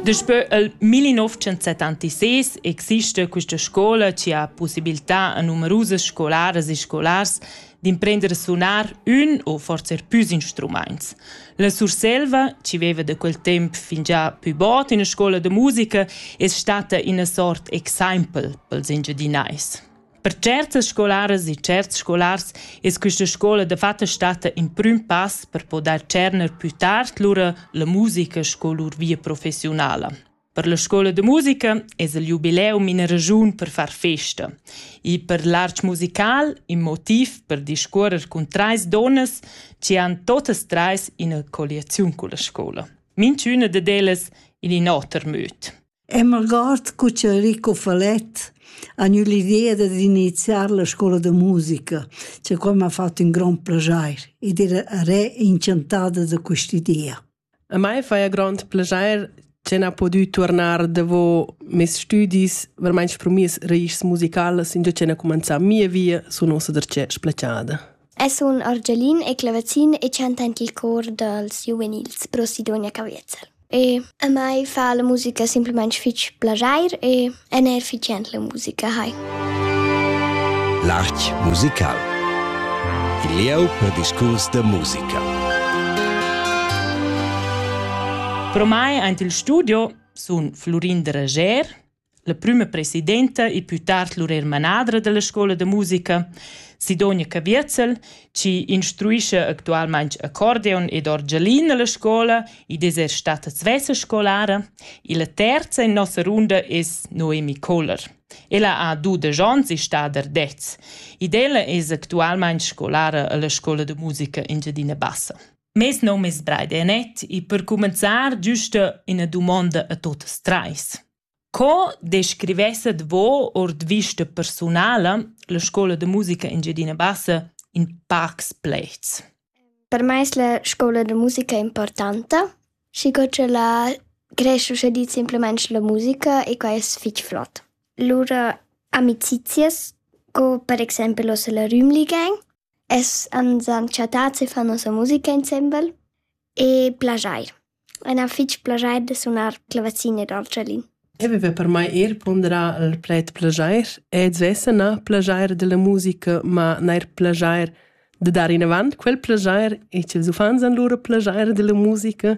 Daspö il 1976 exista questa scola che ha possibilità a numerusas scolaras e scolars d'imprender a sunar ün o forse er püs instrumaints. La Surselva, chi veva da quel temp fingià pü bod üna scola da musica, es stata üna sort exaimpel pels Engiadinais. Per certas scolaras e certs scolars es quista scoula dafatta statta ün prüm pass per podair tscherner pü tard lura la musica sco lur via professiunala. Per la scoula da musica es il jubileum ina ragiun per far festa. E per l'arch musical in motiv per discuorrer cun trais donnas chi han totas trais ina colliaziun culla scoula. Minchüna dad ellas in in oter möd. E m'algord cu che Enrico Falett ha gnü l'idea dad iniziar la scoula da musica, che quai m'ha fat ün grond plaschair ed era re inchantada da quist'idea. A mai faja grond plaschair che n'ha pudü tuornar davo mes stüdis vermaint sprumiers raischs musicalas, ingio che n'ha cumanzà mia via sun uossa darcheu splachada. El sun argialin e clavazin e chanta aint il cor dals giuvenils pro Sidonia Caviezel. E a mai fa la musica simplamaing fich plaschair e el n'ha fich jent la musica hai. L'art musical Il lieu per discurs da musica. Pro mai aint il studio sun Florin Dreger La prüma presidenta e pü tard lur eir manadra da la scoula da musica, Sidonia Caviezel, chi instruischa actualmaing accordeon ed orgelin a la scoula, id es eir stata svessa scolara, e la terza in nossa runda es Noemi Kohler. Ella ha dudesch ons e sta der dez, ed ella es actualmaing scolara a la scoula da musica Engiadina Bassa. Mes nom es Braide Anet e per cumenzar güsta üna dumonda a tuotas trais. Co descrivesset vo ord vista persunala la scoula de musica Engiadina Bassa in pacs plets? Per me es la scoula de musica importanta, schi co che la creschuscha di simplemente la musica e quai es fich flot. Lura amicizias, co per exempel os la Rümli Gang, Es ans han chattats e fan nossa musica insembel e plaschair. A na fich plaschair da sunar clavazin ed orchalin. Eu viva per mai eir ponderà il pled plaschair ed svessa na plaschair da la musica, ma neir plaschair da dar inavant quel plaschair e ch'ils uffants han lura plaschair da la musica.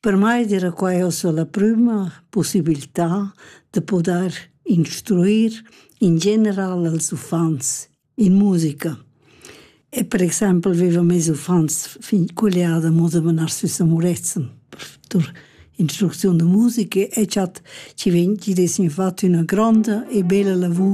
Per mei dera quai ussa la prüma pussibiltà da pudair instruir in general als uffants in musica. E per exaimpel vivan meis uffants fin culiada mo da menar sü sa murezzan per instrucziun da musica e cha chi vegn chi'd es infatti üna gronda e bella lavur